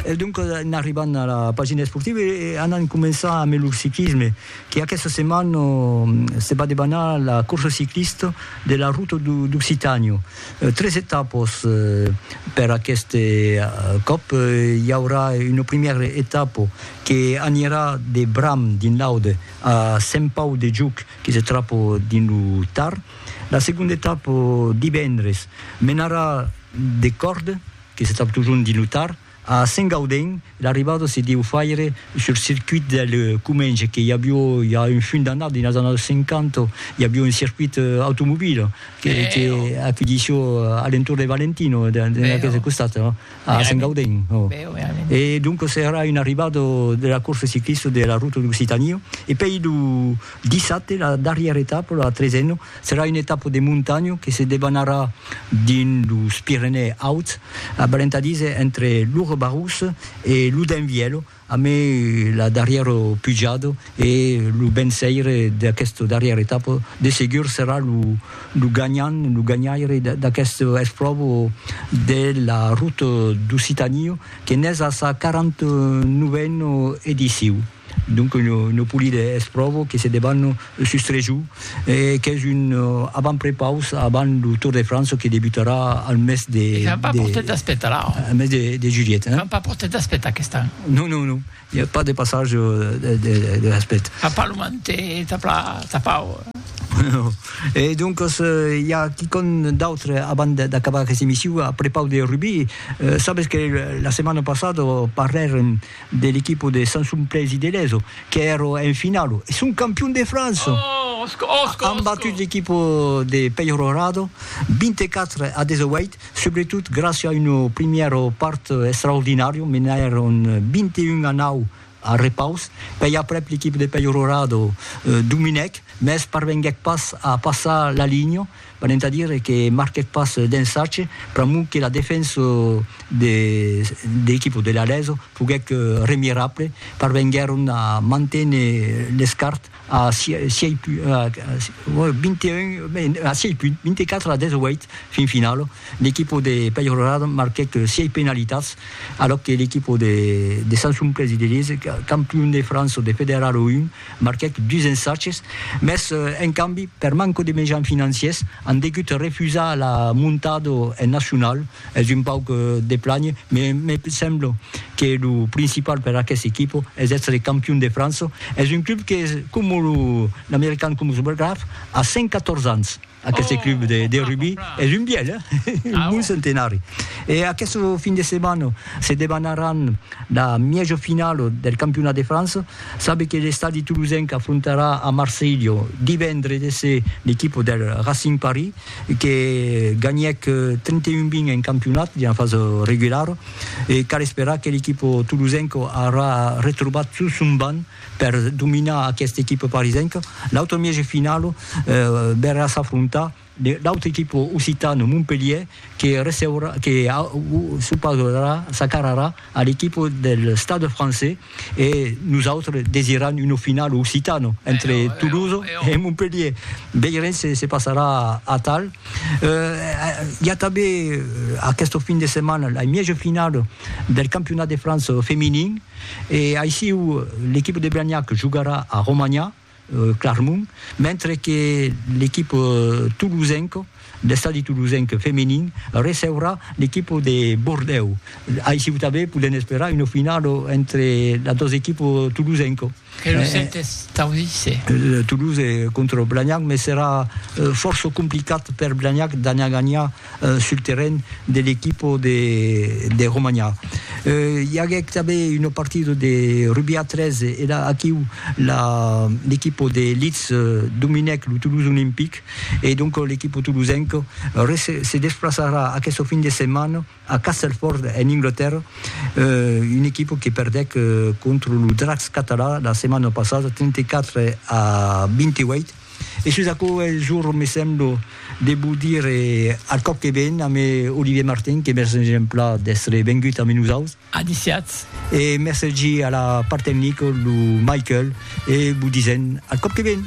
E doncas en arribant a la pagina esportiva e anant començar a melhor ciclisme, que aquesta setmana se va debanar la corsa ciclista de la Ruta d'Occitània. Tres etapas per aquest còp, i aurà una primièra etapa que anirà de Bram dins l'Aude a Sent Pau de Juc que se trapa dins lo Tar. La segonda etapa, divendres, menarà de Còrde, que se tròb totjorn dins lo Tar, a Saint-Gaudin, l'arribada se deu faire sul circuit del Comenge, que i avió ja un funt d'annadas, dins las annadas 50, i avió un circuit automobil que que acudissió a l'entorn de Valentino, dins aqueste costat, a Saint-Gaudin. E doncas èra una arribada de la corsa ciclista de la Ruta d'Occitanie. E pei lo dissabte, la darrièra etapa, la tresena, Serà una etapa de montanha que se debanarà dins los Pirenèus Auts, abrentadís entre lo Rebarous e lo Denvièlo, amé la darrièra pujada e lo venceire d'aquesta darrièra etapa de segur serà lo ganhant, lo ganhaire d'aquesta espròva de la Ruta d'Occitània que n'es a sa 49a ediciu. Donc lo polide es pròvo que se debanno sus tres jours e qu'es un avant prepaus avant lo Tour de França que debutarà al mes de. E qu'an pas portat d'aspetar la. Al mes de juliet. Hein? Qu'an pas portat d'aspetar aquest an. Non, non, non. I a pas de passage de l'aspect. Qu'an pas lo mantè tapau. Non. E doncas i a quicòm d'autre avant d'acabar aquesta emission a prepaus de rugbi. Sabes que la setmana passada parlèrem. de l'equipo de Sansumplèsi de Lezo qu'èro en finalo e son campion de França! An batut l'equipo de Peyrorado 24 a 18, subretot gràcia a un primièr part extraordinàrio, menèron 21 a 9 al repaus, pèi aprèp l'equipo de Peyrorado dominèc, mès parvenguèc pas a passar la linha. Venent a dire que marquèc pas d'ensatge, pr'amor que la defensa de l'equipa de l'Alezo foguèc remirable, parvenguèron a manténer l'escart a sièis punts, 24 a 18, fin finala. L'equipa de Peyrelade marquèc sièis penalitats, alòc que l'equipa de Sansonplessis de Lise, campion de França de Federal 1, Marquèc dus ensatges, mès en cambi, per manco de mejans financiers, an degut refusar la montado en nacional. Es un pauc de plànher, mès me semblo que lo principal per aqueste equipo es èstre campion de França. Es un club que, coma lo American Cumulus Graf, a 114 ans. Aqueste club de rugbi es un bièlh, un bon centenari. E aqueste fin de setmana se debanaràn la mièja finala del campionat de França. Sabe que l'estadi tolosenc afrontarà a Marselha divendre de se l'equipa del Racing Paris que ganhèc 31 20 en campionat dins la fasa regulara e cal esperar que l'equipa tolosenca aurà retrobat tot son banc Per dominar aquesta equipa parisenca, l'autre mièg de finala verrà s'afrontar l'autre equipa occitana Montpelhier que receurà, que s'opausarà, s'acararà a l'equipa del Stade Français e nosautres desiram una finala occitana entre Toulouse e Montpelhier. Veirem se se passarà atal. Hi a tanben aquesta fin de setmana la mièja finala del campionat de França feminin. E aissiu l'equipa de Blagnac jogarà a Romanha, Clarmont, mentre que l'equipa tolosenca, l'Estadi Tolosenc feminin, receurà l'equipa de Bordèu. Aissiu tanben podèm esperar una finala entre las dos equipas tolosenca. E lo sentes tau díser? Toulouse contra Blagnac, mès serà fòrça complicat per Blagnac d'anar ganhar sul terren de l'equipa de Romanha. I aguèc tanben una partida de rugbi a 3 e la aquiu l'equipa de Leeds dominèc lo Toulouse Olympic e donc l'equipa toulousenca se desplaçarà aquesta fin de setmana A Castelford, en Anglatèrra, una equipa que perdèc contra lo Dracs català la setmana passada 34 a 28. E sus aquò es jorn, me sembla, de vos dire al còp que ven a me Olivier Martin, que mercen exempla d'èstre vengut amé nosaus. Adiciatz. E mercegi a la part tecnica lo Michael e vos disen al còp que ven.